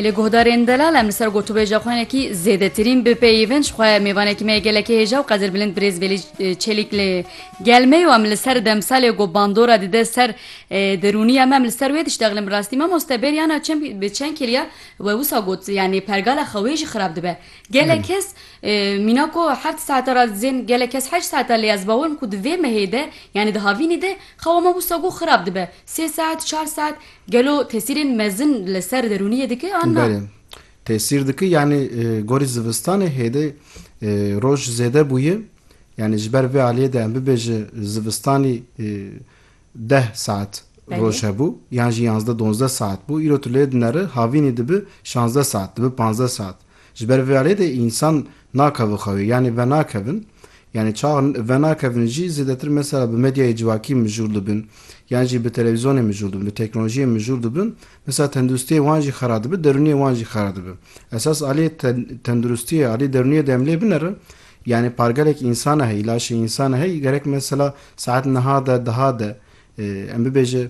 Li guhdarên delal em li ser gotûbêja xwenekî zêdetirîn bipeyivin ji xwe mêvanekî me gelekî hêja û qedirbilind birêz Vêlî Çelîk li gel me yo em li ser demsalê ku bandora dide ser derûniya me em li ser wê diştexlin bi rastî mamoste bêriyana çend bi çend kêliya we wisa got yanî pergala xwe wê jî xirab dibe gelek kes mîna ku heft saeta re dizên gelek kes heşt saeta lê ez bawer im ku di vê mehê de yanî di havînê de Xewa me wisa ku xirab dibe, sê saet, çar saet, gelo tesîrên mezin li ser derûniyê dike an na? Belê. Tesîr dike yanî gorî zivistanê hêdê roj zêde bûye, yanî ji ber vê aliyê de em bibêje zivistanî deh saet roj hebû yan jî yanzdeh donzdeh saet bû, îro tu lê dineri havînî dibi şanzdeh saet, dibi panzdeh saet. Ji ber vê alê de însan nake vê xewê yanî venakevin yanî çax venakevin jî zêdetir mesela bi medyayê civakî mijûl dibin yan jî bi televîzyonê mijûl dibin bi teknolojiyê mijûl dibin mesela tenduristiyê wan jî xera dibe derûniyê wan jî xera dibe esas alê tenduristiyê alê derûniyê de em lê binerin yanî pargelek însane heye îlaşê însane heye gerek mesela saet niha de diha de em bibêje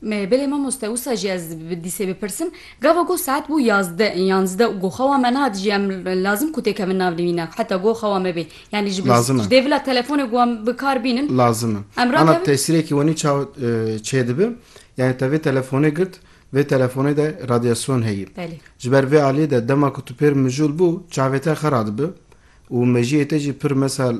Me, Belê mamoste, wisa jî ez bi dîsê bipirsim. Gava goh saet bû yazdeh ên yanzdeh û goh xewa me nehat jî em lazim ku têkevin nav nivîne heta goh xewa me bê. Yanî ji Lazim e. ji dê vila telefonê ku em bi kar bînin Lazim e. em Ana rakevin. tesîrekî wenî çawa e, çêdibe? Yanî te vê telefonê girt, vê telefonê de radyasyon heye. Belê. Ji ber vê aliyê de dema ku tu pêr mijûl bû, çavê te xera dibe. Û mejiyê te jî pir mesal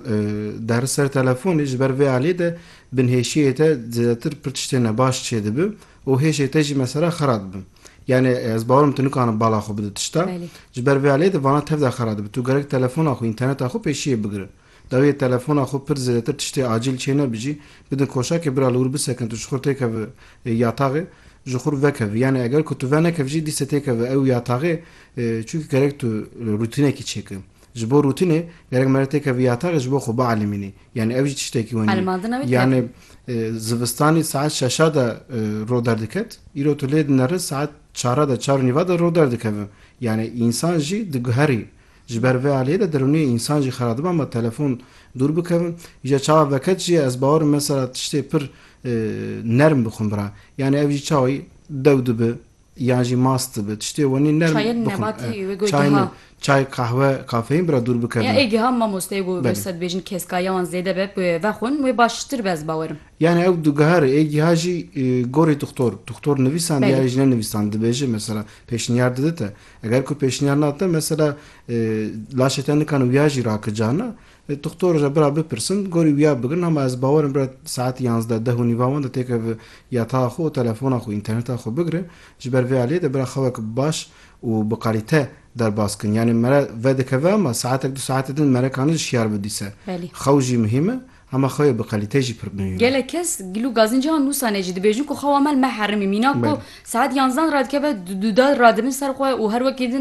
deri ser telefonê ji ber vê aliyê de binhêşiyê te zêdetir pir tiştên nebaş çêdibi û hêşê te jî mesela xera dibi. Yanê ez bawer im tu nikarin bala xwe bidi tişta. Ji ber vê aliyê de vana tev de xera dibi. Tu gerek telefona xwe, înterneta xwe pêşiyê bigiri. Dawiyê telefona xwe pir zêdetir tiştê acîl çênebijî. Bidin koşakê bira li wir bisekin tu ji xwe têkevi yataxê. Ji xwe vekevî. Yanê eger ku tu venekevijî dîse têkevi ew yataxê Çunki gerek tu rûtînekî çêkir. Ji bo rûtînê gerek mere têkevî yatarê ji bo xwe bielîmînî. Yanî ev jî tiştekî wenî ye. Yanî zivistanî saet şeşa de roj derdiket, îro tu lê dinerin saet çara de, çar û nîva de roj derdikeve. Yanî însan jî diguherî. Ji ber vê aliyê de derûniyê însan jî xera dibe ma telefon dûr bikevin. Îja çawa veket jî ye ez bawer im mesela tiştê pir nerm bixwim bira. Yanî ev jî çawa dew dibe, Yan jî mast dibe, tiştê wenî nerm bixwin. Çayên nebatî wê got Çay giha. Çay, qehwe, kafeîn bira dûr bikevin. Ya ê giha mamoste got wê sed bêjin keskayiya wan zêde be bi wê vexwin wê baştir be ez bawerim. Yanî ew du giha re ê giha jî gorî dixtor, dixtor nivîsandiye ya jî nenivîsand dibêje mesela pêşniyar dide te. Eger ku pêşniyar nade te mesela laşê te nikan wiya jî rake cana. Doktor ji bira bipirsin, gorî wiya bigrin hema ez bawerim bira saetî yanzdeh, deh û nîva wenda têke bi yataxa xwe û telefona xwe, înterneta xwe bigire. Ji ber vê aliyê de bira xewek bi baş û bi qalîte derbas kin. Yanî mere vedikeve hema saetek du saetê din mere kanî ji şiyar bidîse. Belê. Xew jî muhîm e, hema xewê bi qalîte jî pir muhîm e. Gelek kes gelo gazên cihan nûsane jî dibêjin ku xewa me li me herêmî mîna ku Belê. saet yanzdan radikeve du dal radibin ser xwe û her wekî din